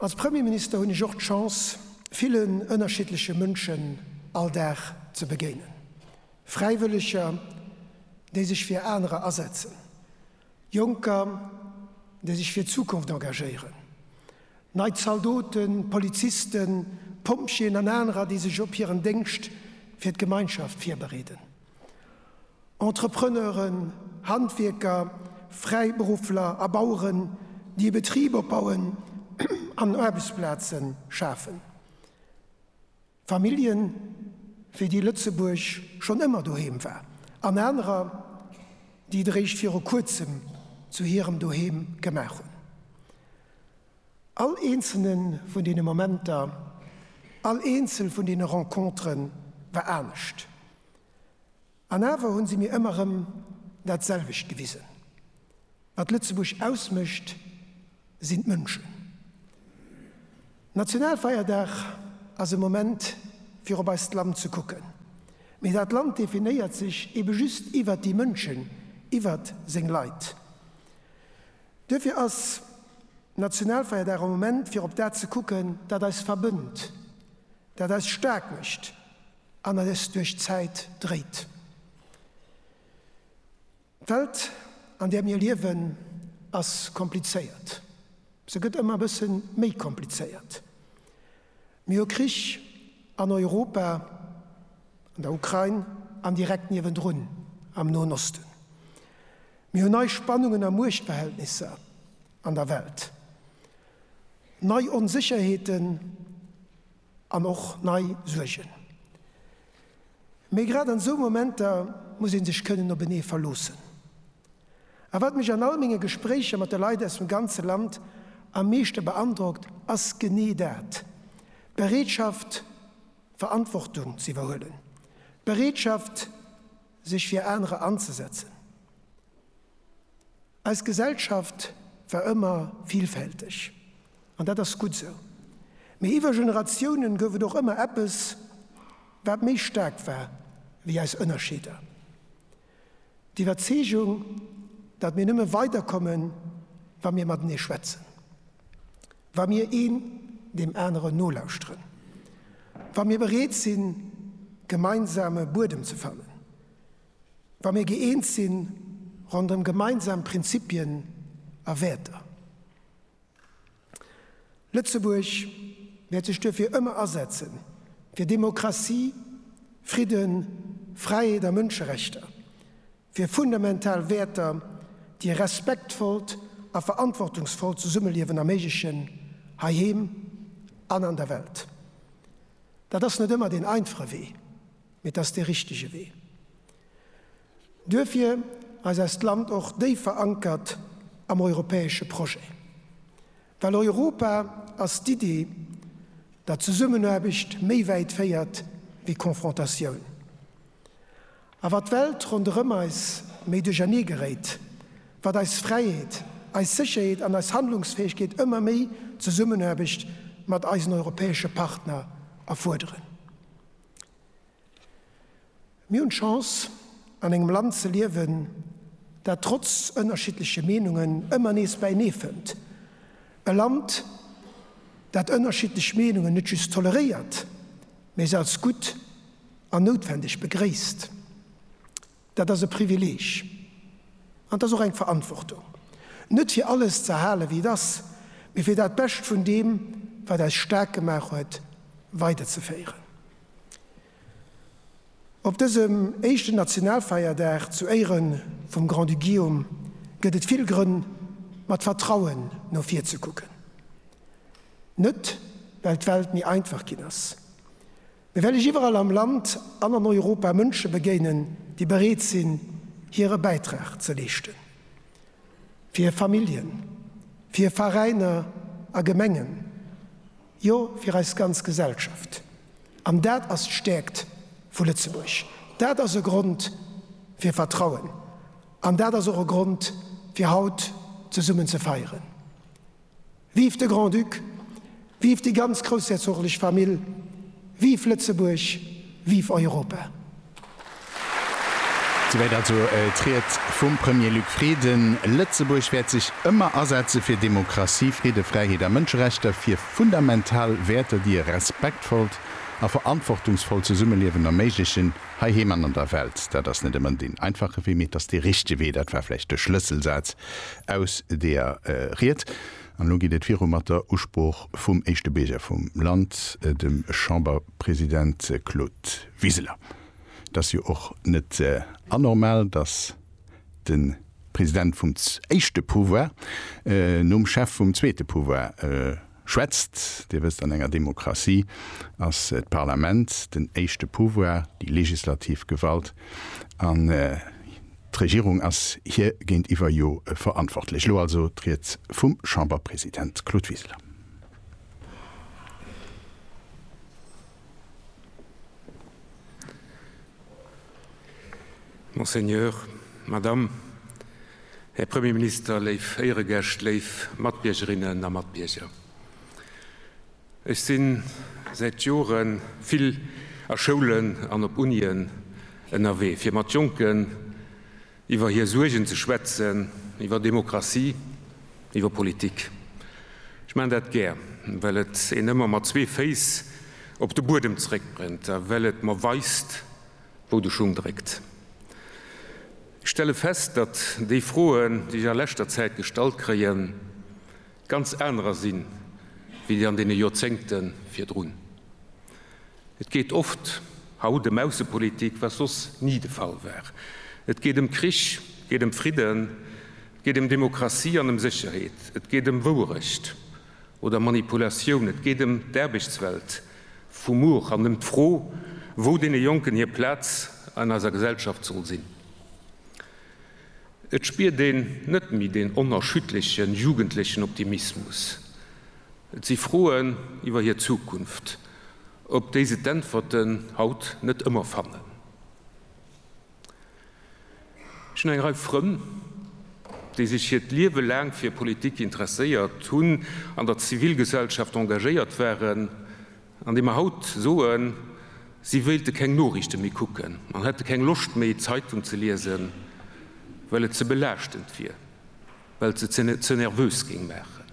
Als Premierminister hunn ech och d'Chance, villen ënnerschiddleche Mënschen all Dag ze begéinen. Fräiwëlleger, déi sech fir anerer asetzen, Jonker, déi sech fir d'Zukunft engagéieren, nei Zaldoten, Polizisten, Pompjeeën an anerer, déi sech op hiren Déngscht fir d'Gemeinschaft virbereeden. Entrepreneuren, Handwierker, Fräiberuffler a Baueren, déi e Betrib opbauen an Aarbechtsplaze schafen. Familljen, fir déi Lëtzebuerg schonn ëmmer doheem war, an anerer, déi et eréischt viru kuerzem zu hirem Doheem gemaach hunn. All eenzelne vun deene Momenter, all eenzel vun deene Rencontere war anescht. An awer hu se mir ëmmer erëm dat selwecht gewisen, Wat Lëtzebuerg ausmécht, sinn d'Mënschen. Nationalfeierdag ass e Moment fir op eist Land ze kucken, mee dat Land definéiert sech ebe just iwwert déi Mënschen, iwwert seng Leit. Duerfir ass d'Nationalfeierdag e Moment fir op dat ze kucken, dat eis verbënnt, dat eis staark mécht an eis duerch d'Zäit dréit. D'Welt, an där mir liewen, ass komplizéiert. Se gëtt ëmmer e bësse méi komplizéiert. Mir hu Krich an Europa, an der Ukrain an direkt niewendrun am Noen Osten. Mir hu nei Spannungen a Muechtverhältnisser an der Welt, nei Onsécherheeten an och nei Suergen. Mee grad an esou Momenter muss een sech kënnen op enee verloossen. A wat mech an all menge Gespréicher mat de Leit aus dem ganze Land am meeschte beandrockt, ass genee dat, d'Bereetschaft Verantwortung z'iwwerhuelen, d'Bereetschaft sech fir anerer anzesetzen. Eis Gesellschaft war ëmmer villfälteg, An dat ass gutt esou. Mee iwwer Generatiounen gouf et och ëmmer eppes, wat méi staark war wéi eis Ënnerscheeder. D'Iwwerzeegung, datt mir nëmme weiderkommen, wa mir matenee schwätzen, wa mir een deem aneren nolauschteren, wa mir bereet sinn, gemeinsame Buedem ze fannen, wa mir gëeent sinn ronderëm gemeinsam Prinzipien a Wäerter. Lëtzebuerg wäert sech duerfir ëmmer asetzen, fir Demokratie, Fridden, Fräiheet a Mënscherechter, fir fundamental Wäerter, déi e respektvollt a verantwortungsvollt Zesummeliewen erméiglechen, heiheem an an der Welt. Dat ass net ëmmer deen einfache Wee, mee et ass dee richtege Wee. Duerfir ass eist Land och déif verankert am europäesche Projet, well Europa ass d'Iddi, datt Zesummenaarbecht méi wäit féiert wéi Konfrontatioun. A wat d'Welt ronderëm eis méi duerchernee geréit, wat eis Fräiheet, eis Sécherheet an eis Handlungsfäegkeet ëmmer méi Zesummenaarbecht mat eisen europäesche Partner erfuerderen. Mir hunn d'Chance, an engem Land ze liewen, dat trotz ënnerschiddleche Meenungen ëmmer nees bäinee fënnt. E Land, dat ënnerschiddlech Meenungen net just toleréiert, mä se als gutt an noutwendeg begréisst. Dat ass e Privileg an et ass och eng Verantwortung, net fir alles ze erhalen, wéi et ass, mä fir dat Bescht vun deem, wat eis staark gemaach huet, weiderzeféieren. Op dësem éischten Nationalfeierdag zu Éiere vum Grand-Duc Guillaume gëtt et vill Grënn, mat Vertrauen no vir ze kucken. Net well d'Welt méi einfach ginn ass, mee well ech iwwerall am Land an an Europa Mënsche begéinen, déi bereet sinn, hire Bäitrag ze leeschten, fir hir Familljen, fir hir Veräiner a Gemengen, Jo, fir eis ganz Gesellschaft. An dat ass d'Stäerkt vu Lëtzebuerg. Dat ass e Grond fir Vertrauen an dat ass och e Grond fir haut zesummen ze feieren. Vive de Grand-Duc, vive déi ganz groussherzoglich Famill, vive Lëtzebuerg, vive Europa! Souwäit also d'Ried vum Premier Luc Frieden. Lëtzebuerg wäert sech ëmmer asetze fir Demokratie, Fridde, Fräiheet a Mënscherechter, fir fundamental Wäerter, déi e respektvollt a verantwortungsvollt Zesummeliewen erméiglechen, heiheem an an der Welt. Dat ass net ëmmer deen einfache Wee, mee et ass dee richtege Wee. Dat war vläicht de Schlësselsaz aus deeër Ried. An elo geet et viru mat der Usprooch vum éischte Bierger vum Land, dem Chamberpresident Claude. Wiseler, Et ass jo och net anormal, datt de President vum éischte Pouvoir nom Chef vum zweete Pouvoir schwätzt. Dir wësst, an enger Demokratie ass d'Parlament den éischte Pouvoir, déi legislativ Gewalt, an d'Regierung ass hir géintiwwer jo verantwortlech. Elo also d'Ried vum Chamberpresident Claude Wiseler. Monseigneur, Madame, Här Premier Minister, léif Éieregäscht, léif Matbiergerinnen a Matbierger. Ech si säit Jore vill a Schoulen an op Unien ënnerwee, fir mat Jonken, Iwwer hir Suergen ze schwätzen, iwwer Demokratie, iwwer Politik. Ech maachen dat gär, well et een ëmmer mat zwee Féiss op de Buedem zeréckbréngt a well et mer weist, wou de Schung dréckt. Ech stelle fest, datt déi Froen, déi ech a leschter Zäit gestallt kréien, ganz anerer sinn, wéi déi an deene Joerzéngte virdrun. Et geet oft haut ëm Aussepolitik, wat soss ni de Fall war. Et geet ëm Krich, et geet ëm Fridden, et geet ëm Demokratie an ëm Sécherheet, et geet ëm Wouerecht oder Manipulatioun, et geet ëm d'Aarbechtswelt vu muer an ëm d'Fro, wou deene Jonken hir Plaz an eiser Gesellschaft soll sinn. Et spiert een net méi deen onerschütterleche jugendlechen Optimismus, Et si Froen iwwer hir Zukunft, op déi se d'Äntwerten haut net ëmmer fannen. Ech hunn eng Rei Frënn, déi sech hiert Liewe laang fir Politik interesséiert hunn, an der Zivilgesellschaft engagéiert waren an déi mer haut soen, si wéilte keng Noriichte méi kucken an hätte keng Loscht méi, d'Zeitung ze liesen, well et ze belaaschtend wier, well et se ze nervös géing maachen.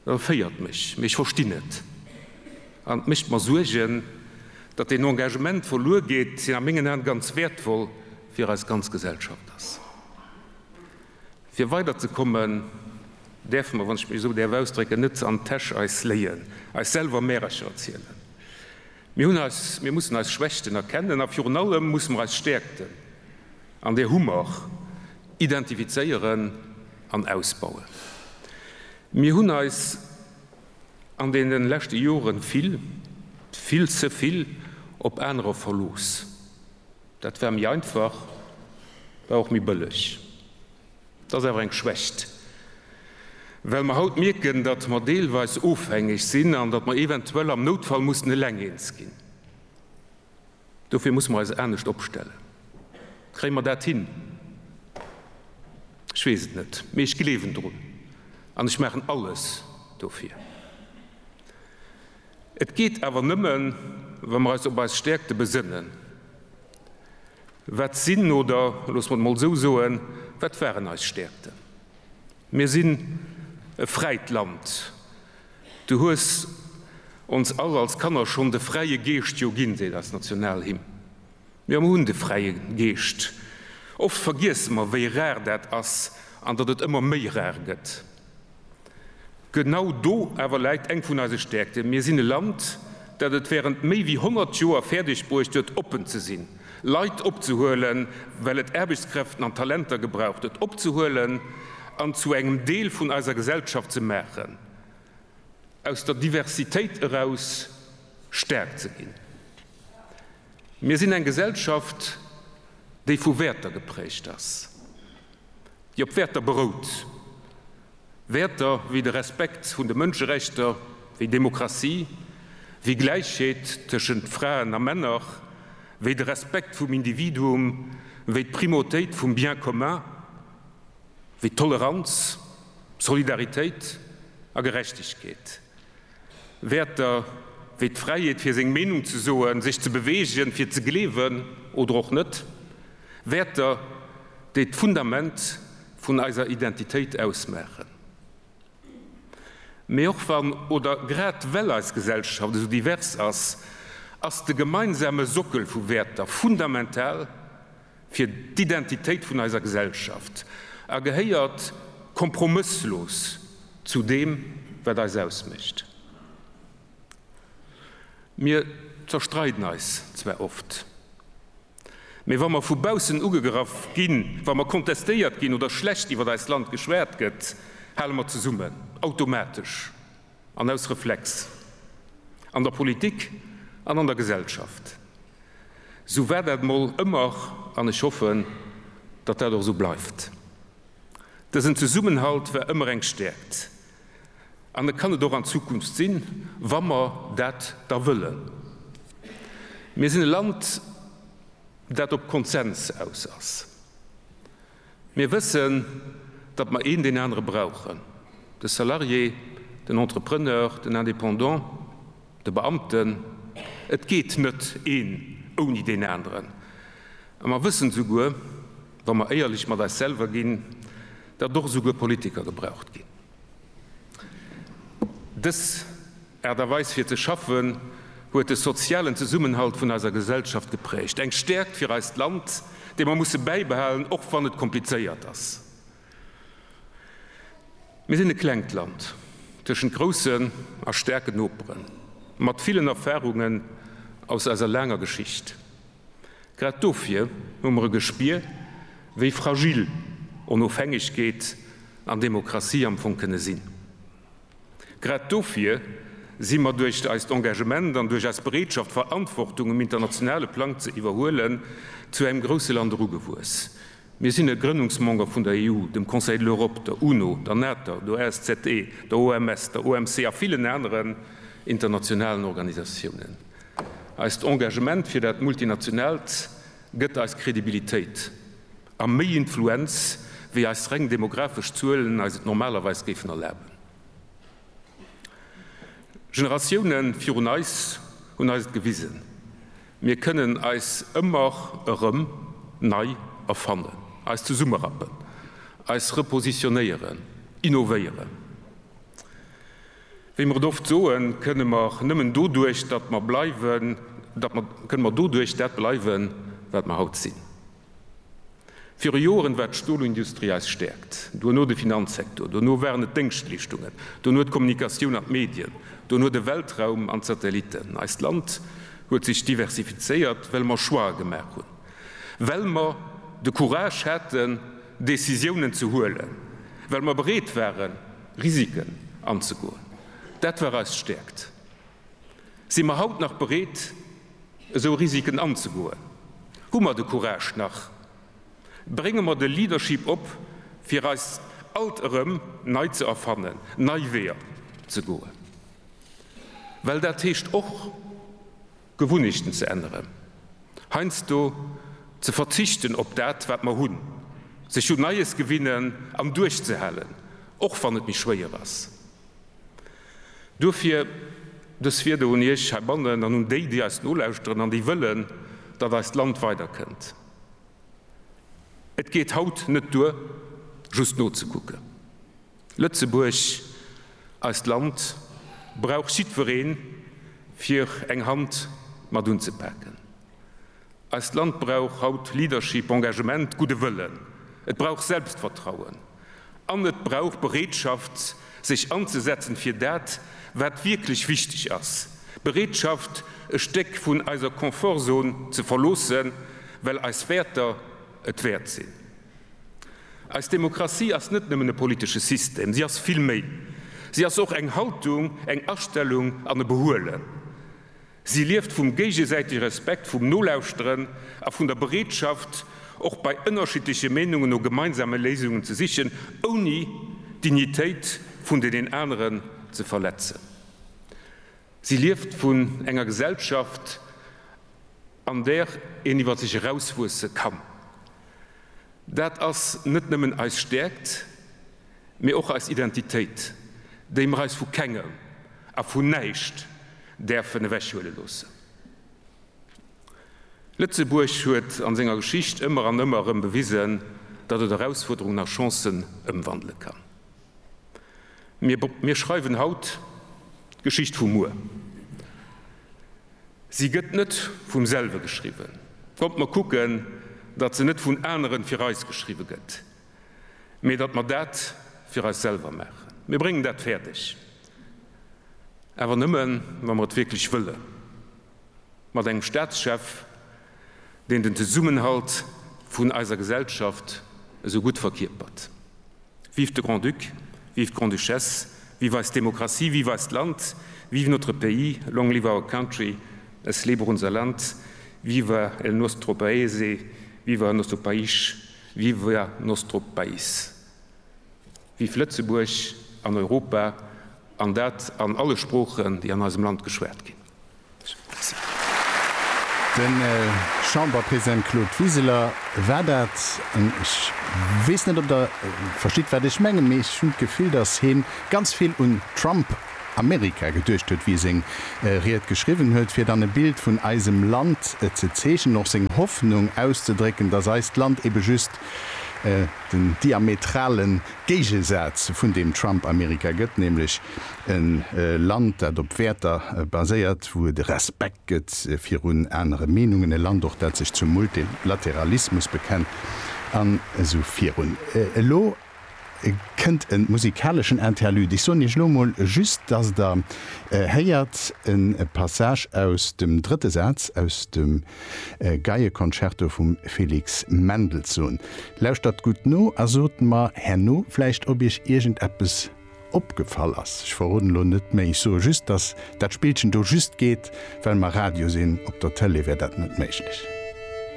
E féiert mech, mee ech verstinn et. An et mécht mer Suergen, datt een Engagement verluer geet, deen a mengen Aen ganz wäertvoll fir eis ganz Gesellschaft ass. Fir weider ze kommen, däerfe mer, wann ech mech esou däerf ausdrécken, net an d'Täsch eis léien, eis selwer Märercher erzielen. Mir hunn eis, mir mussen eis Schwächten erkennen a virun allem musse mer eis Stäerkten, An där hu mer, identifizéieren an ausbauen. Mir hunn eis an deene leschte Jore vill, vill ze vill op anerer verlooss. Dat war méi einfach, war och méi bëlleg. Dat ass awer eng Schwächt, well mer haut mierken, datt mer deelweis ofhängeg sinn an datt mer eventuell am Noutfall mussen eleng eens ginn. Dofir musse mer eis anescht opstellen. Kréie mer dat hin? Ech weess et net, mee ech gleewen drun an ech maachen alles dofir. Et geet awer nëmme wa mer eis op eis Stäerkte besënnen. Wat sinn, oder loosse mer et emol esou soen, wat waren eis Stäerkten? Mir sinn e fräit Land, Du hues ons all als Kanner schonn de fräie Geescht jo ginn, seet eis Nationalhymn. Jo, mer hunn de fräie Geescht. Oft vergiesse mer, wéi rar dat ass an datt et ëmmer méi rar gëtt. Genau do awer läit eng vun eise Stäerkten, Mir sinn e Land, dat et wärend méi wéi 100 Joer fäerdegbruecht huet, oppen ze sinn. Leit opzehuelen, well et Aarbechtskräften an Talenter gebraucht huet, opzehuelen an zu engem Deel vun eiser Gesellschaft ze maachen, aus der Diversitéit eraus staark ze ginn. Mir sinn eng Gesellschaft, déi vu Wäerter geprägt ass, déi op Wäerter berout, Wäerter wéi de Respekt vun de Mënscherechter, wéi Demokratie, wéi Gläichheet tëschent Fraen a Männer, wéi de Respekt vum Individuum, wéi d'Primautéit vum Bien commun, wéi Toleranz, Solidaritéit a Gerechtegkeet. Wäerter wéi d'Fräiheet fir seng Meenung ze soen, sech ze beweegen, fir ze gleewen oder och net, Wäerter, déi d'Fundament vun eiser Identitéit ausmaachen. Mee och wann, oder grad well eis Gesellschaft esou divers ass, ass de gemeinsame Sockel vu Wäerter fundamental fir d'Identitéit vun eiser Gesellschaft a gehéiert kompromësslos zu deem, wat eis ausmécht. Mir zerstreiden eis zwar oft, mee wa mer vu baussen ugegraff ginn, wa mer kontestéiert ginn oder schlecht iwwer eist Land geschwat gëtt, hale mer zesummen, automatesch. An aus Reflex. An der Politik an an der Gesellschaft. Esou war dat mol ëmmer an ech hoffen, datt dat och esou bleift. Dësen Zesummenhalt war ëmmer eng Stäerkt an e kann et och an Zukunft sinn, wa mer dat da wëllen. Mir sinn e Land, dat op Konsens aus ass. Mir wëssen, datt mer een deen anere brauchen, de Salarié, den Entrepreneur, den Indépendant, de Beamten. Et geet net een ouni deen aneren. A mer wëssen esouguer, wa mer éierlech mat eis selwer ginn, datt och esouguer Politiker gebraucht ginn. Dës Aart a Weis fir ze schaffen huet de sozialen Zesummenhalt vun eiser Gesellschaft geprägt. Eng Stärkt fir eist Land, déi mer musse bäibehalen, och wann et komplizéiert ass. Mir sinn e klengt Land tëschent groussen a staarken Noperen, mat villen Erfahrungen aus eiser laanger Geschicht. Grad dofir hu mer e Gespier, wéi fragil Onofhängegkeet an Demokratie am Fong kënne sinn. Grad dofir si mer duerch eist Engagement an duerch eis Bereetschaft, Verantwortung um internationale Plang ze iwwerhuelen, zu engem grousse Land erugewuess, Mir sinn e Grënnungsmember vun der EU, dem Conseil de l'Europe, der UNO, der NATO, der OSZE, der OMS, der OMC a villen aneren internationalen Organisatiounen. Eist Engagement fir dat Multinationaalt gëtt eis Kredibilitéit a méi Influenz, wéi eis reng demographesch Zuelen eis et normalerweis géifen erlaben. Generatioune virun eis hunn eis et gewisen. Mir kënnen eis ëmmer erëm nei erfannen, eis zesummerappen, eis repositionéieren, innovéieren. Wéi mer et oft soen, kënne mer nëmmen doduerch dat mer bleiwen, kënne mer doduerch dat bleiwen, wat mer haut sinn. Viru Joeren war d'Stolindustrie eis Stäerkt, duerno de Finanzsektor, duerno waren et d'Déngschtleeschtungen, duerno d'Kommunikatioun an d'Medien, duerno de Weltraum an d'Satellitten. Eist Land huet sech diversifizéiert, well mer Choixë gemaach hunn, well mer de Courage haten, Decisiounen ze huelen, well mer bereet waren, Risiken anzegoen. Dat war eis Stäerkt. Si mer haut nach bereet, esou Risiken anzegoen? Hu mer de Courage nach? Brénge mer de Leadership op, fir eis alt erëm nei ze erfannen, nei Weeër ze goen? Well dat heescht och, Gewunnechten ze änneren, heiansdo ze verzichten op dat, wat mer hunn, sech un Neies gewinnen an duerchzehalen, och wann et méi schwéier ass. Duerfir dës Wieder un Iech heibannen an un déi, déi eis nolauschteren an déi wëllen, datt eist Land weiderkënnt, Et geet haut net duer, just nozekucken. Lëtzebuerg, eist Land, brauch jiddwereen, fir eng Hand mat unzepaken. Eist Land brauch haut Leadership, Engagement, gudde Wëllen. Et brauch Selbstvertrauen. An et brauch Bereetschaft, sech anzesetzen fir dat, wat wierklech wichteg ass. Bereetschaft, e Stéck vun eiser Confortzone ze verloossen, well eis Wäerter et wäert sinn. Eis Demokratie ass net nëmmen e politesche System. Si ass vill méi. Si ass och eng Haltung, eng Astellung an e Behuelen. Si lieft vum géigesäitege Respekt, vum Nolauschteren a vun der Bereetschaft, och bei ënnerschiddleche Meenungen no gemeinsame Léisungen ze sichen, ouni d'Dignitéit vun deenen aneren ze verletzen. Si lieft vun enger Gesellschaft, an där een iwwer sech erauswuesse kann. Dat ass net nëmmen eis Stäerkt. mee och eis Identitéit, déi mer eis vu kengem a vun näischt däerfen ewechhuele loossen. Lëtzebuerg huet a senger Geschicht ëmmer an ëmmer erëm bewisen, datt et Erausfuerderungen a Chancen ëmwandele kann. Mir schreiwen haut d'Geschicht vu muer. Si gëtt net vum selwe geschriwwen. Kommt mer kucken, datt se net vun aneren fir eis geschriwwe gëtt. mee datt mer dat fir eis selwer maachen. Mir bréngen dat fäerdeg, awer nëmme wa mer et wierklech wëlle, mat engem Staatschef, deen den Zesummenhalt vun eiser Gesellschaft esou gutt verkierpert. Vive de Grand-Duc, vive d'Grande-Duchesse, vive eis Demokratie, vive eist Land, vive notre pays, long live our country, es lebe unser Land, viva el nostro paese, viva el nostro país, Viva nostro Pais! Vive Lëtzebuerg an Europa, an dat an alle Sproochen, déi an eisem Land geschwat ginn! Merci. De Chamberpresident Claude Wiseler, War dat en, ech weess net, ob Der verstitt, wat ech mengen, mee ech hunn d'Gefill, datt hien ganz vill un Trump Amerika geduecht huet, wéi e seng Ried geschriwwen huet, fir dann e Bild vun eisem Land ze zeechnen, och seng Hoffnung auszedrécken, datt eist Land ebe just den diametrale Géigesaz vun deem Trump-Amerika gëtt, nämlech e Land, dat op Wäerter baséiert, wou et e Respekt gëtt virun anere Meenungen, e Land och, dat sech zum Multilateralismus bekennt an esou virun. Elo. kënnt e musikaleschen Interlude. Ech soen Iech elo mol just, dass Der héiert e Passage aus dem drëtte Saz aus dem Geieconcerto vum Felix Mendelssohn. Lauschtert gutt no a sot mer herno vläicht, ob Iech iergendeppes opgefall ass. Ech verroden elo net méi. Ech soe just, dass dat Spillchen do just geet, well mer Radio sinn. Op der Tëlee wär dat net méiglech.